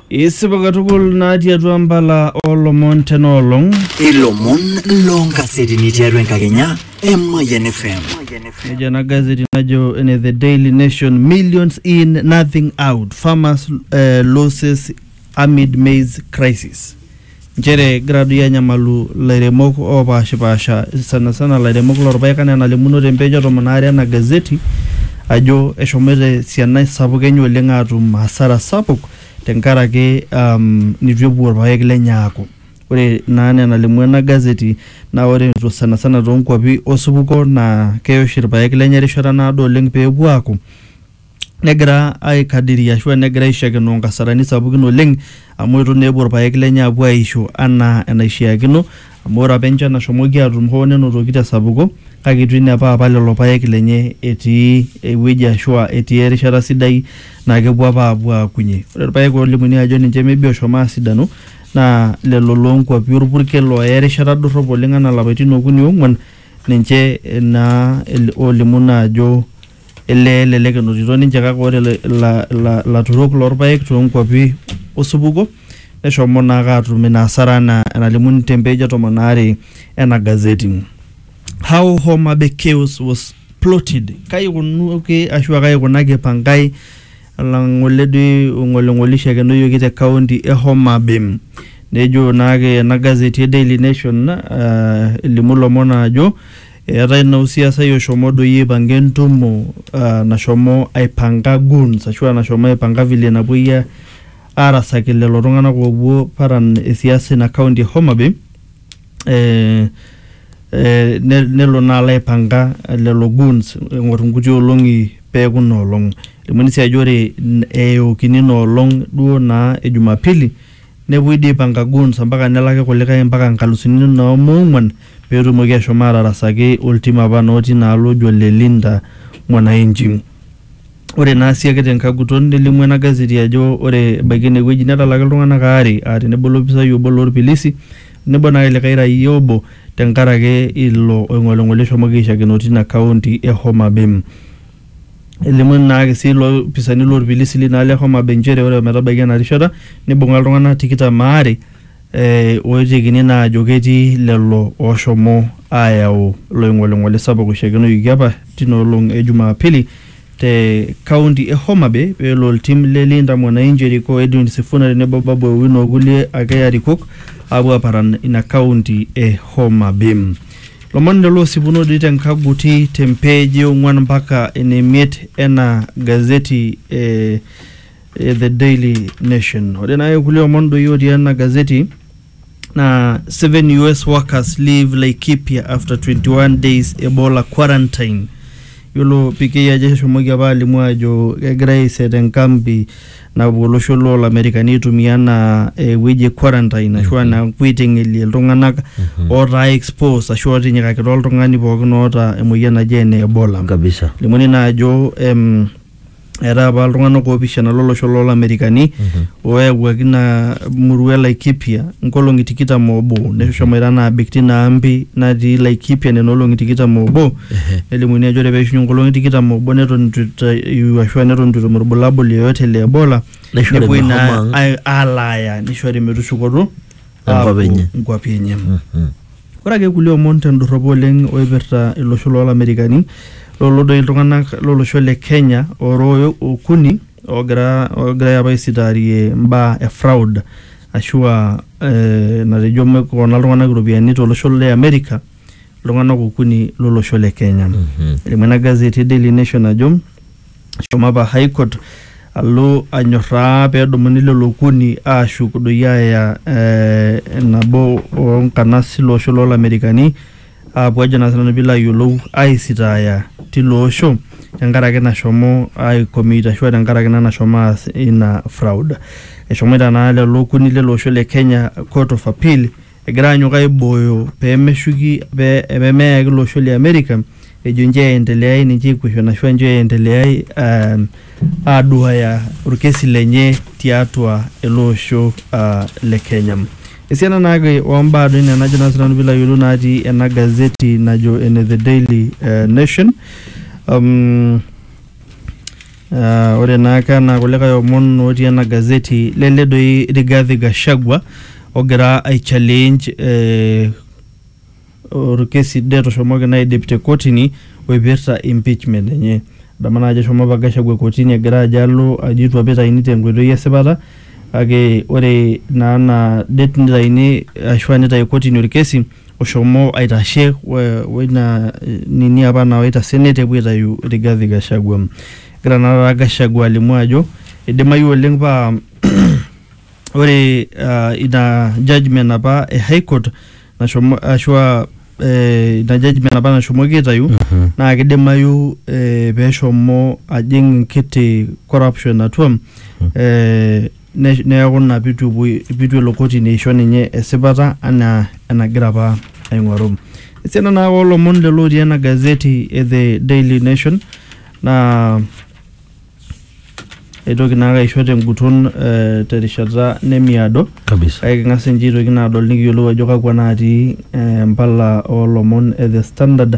Isipa katukul natii atua mbala olomon tena olong. Ilomon loonkasetini tiatua enkakenya e Mayian FM. Nejo ena gazeti najo ene The Daily Nation millions in nothing out farmers uh, losses amid maize crisis. nchere egira doi anyamalu ilairemok opashipasha sanasana ilairemok lorpaek anaa enalimuno te page e tomon aare ena gazeti ajo eshomoito esiana sapuk enye oleng atum hasara sapuk tenkaraki um, nitu epuo irpaek lenye aaku ore naa enaa enalimu ena gazeti naa ore to- sanasana toonkuapi osupuko naa keya oshi irpaek lenye erishata naado oleng peepuo aaku negira aikadiria ashu negira aishakenoo nkasarani sapukin oleng amu itu naa epuo irpaek lenye apuo aisho anaa enaishiakino amu ore apa enchan nashomoki atum hoo nenotoki tesapuko kake itu inepa apa lelo paek lenye etii ewueji ashua etii erishata sidai naa kepuo apa apuo aakunyie ore irpaek olimuni ajo ninche maybe oshomo asidanu naa lelo lonkuapi orpurkel oya erishata dorrop oleng anaa ilapaitin okuni ong'uan ninche naa olimu naa ajo. Ele elelek enotito ninche kake ore ila- ila- ila- ilaturok loorpaek toonkuapi osupuko neshomo naake aatum ina asara anaa enalimu te mpeej e tomon aare ena gazeti. How Homa Bay chaos was plotted kai ikunuaki ashu kai ikunaki Pangai olang'ole doi ong'oling'olishe ekenoyioki te kaunti e Homa Bay. Nejo naake ena gazeti e Daily Nation ah, elimu ilomon aajo Eetae naa osiasai oshomo doi aipanga entumo uh, nashomo aipanga goons ashua nashomo aipanga vile napuoi a- arasaki lelo tung'anak oopuo paran e siasa ina county e Homa Bay eh, eh, ne- nelo naa alo aipanga lelo goons eng'or inkuti olong'i peeku ina olong'. Elimuni sii ajo ore n- eyookini ina olong' duo naa e jumapili Nepuoi dii aipanga goons ompaka nelaki kulikae mpaka nkalusuni noo moong'uan pee etumoki ashom aatarasaki oltim apa noo tina alo oji ole Linda Mwananchi. Ore naa sii ake te nkae guton nelimu ena gazeti ajo ore ebaiki ene wueji netalaki iltung'anak aare aa tenebo olopisai obo loo lpilisi o nebo naa likae raia obo tenkaraki ilo oing'oling'oli oshomoki aishakeno tina kaunti e Homa Bay. Elimu ina aaki sii ilopisaani loo lpilisi lina aali e Homabay nchere ore ometabaiki ena rishata neibunga iltungana tikitam aare ooitekini naa aajo ketii lelo ooshomo aayau ilo ingolingoli sapuk oishakenoyioki apa tina olong e Jumapili te kaunti e Homabay pee elo oltim le Linda Mwanainchi erikoo o Edwin Sifuna tenebo Babu Owino okulie ake arikok aapuo aaparan ina kaunti e Homabay. Lomon lelo osipunodi te nkaguti te mpeeji e ong'uan mpaka ene miet ena gazeti e, e The Daily Nation. Ore naake kulie omon doi otii ena gazeti na seven US workers leave Laikipia after 21 days Ebola quarantine. Yiolo PK ajo eshomoki apa alimu ajo kegirai aiset enkambi napuo olosho loo lamerikani aitumia anaa ewueji e quarantine ashu anaa epuo aiteng'elie iltung'anak ootaa exposed ashu ootinyikakita oltung'ani pookin oota emoyian naji ene ebola kabisa limuni naa ajo em, eetai apa iltung'anak oopishana lolosho loo lamerikani ooyawuaki ina murua e laikipia nkolong'i tikitam oobo neshomoita naa abik tina ambi natii laikipia nena olong'i tikitam oobo Ehe. nelimuni ajo ore peishunye nkolong'i tikitam obo neton itu itayu ashu neton itu etum irbulabul yoyote le ebola Neishori nepuoi mehomo naa ang'. ai- alaaya nishori metushukoto Enkop aapuo enye. nkuapi enye Mhm. ore ake kulie omon tendorropo oleng oipirta ilosho loolamerikani lolo doi iltung'anak lolosho le kenya orooyo okuni oogira oogirai apa aisitaarie mbaa e fraud ashua eh, natejo mekona iltung'anak iropiyiani tolosho le amerika iltung'anak okuni lolosho le Kenya. Elimu ena gazeti e Daily Nation ajo eshomo apa High Court alo anyorraa pedumuni lelo okuni ashuk doi aya eh, nabo onkanas ilo osho lolamerikani apuo ajo naa sinanu piilo ayiolou aisitaaya tilo osho tenkaraki nashomo ai commit ashua tenkaraki naa nashomo aas ina fraud. Eshomoita naa lelo okuni lele osho le Kenya court of appeal egira anyok aibooyo pemeshuki pemeyaki ilo osho le America ejo nche aendeleai ninche equation ashu nche aendeleai um, aduaya orkesi lenye tiatua ele osho uh, le Kenya. Esiana naake ombaa doi nena ajo naa sinanu pilo ayiolou natii ena gazeti najo ene The Daily uh, Nation um, Uh, ore naake anaa kulikae omon otii ena gazeti lele doi Rigathi Gachagua ogira ai challenge eh, orkesi det oshomoki naa aidip te kotini oipirta impeachment enye adamu naa ajo eshomo apa Gachagua kotini egira ajo alo ajo itu apa itaini tenkoitoi esipata kake ore naa ina det nitaini ashua nitai kotini orkesi oshomo aitashe woina nini apa nawaita senate epuo aitayu Rigathi Gachagua. Egira naa taata Gachagua alimu ajo eidimayu oleng paa ore uh, ina judgment apa e high court nashomo ashua eh, ina judgment apa nashomoki aitayu naa kidimayu eh, peshomo ajing enkiti corruption atua eh, ne- neaku ina pitu epuoi pitu elo kotini aisho ninye esipata anaa enagira apa aing'oru esiana naa oolomon lelo otii ena gazeti e the daily nation naa eitoki naake aisho tenguton eh, terishata nemiado kabisa kake king'as ninche aitoki naa adol nikiyiolou ajo kakwa natii eh, mpala oolomon e the standard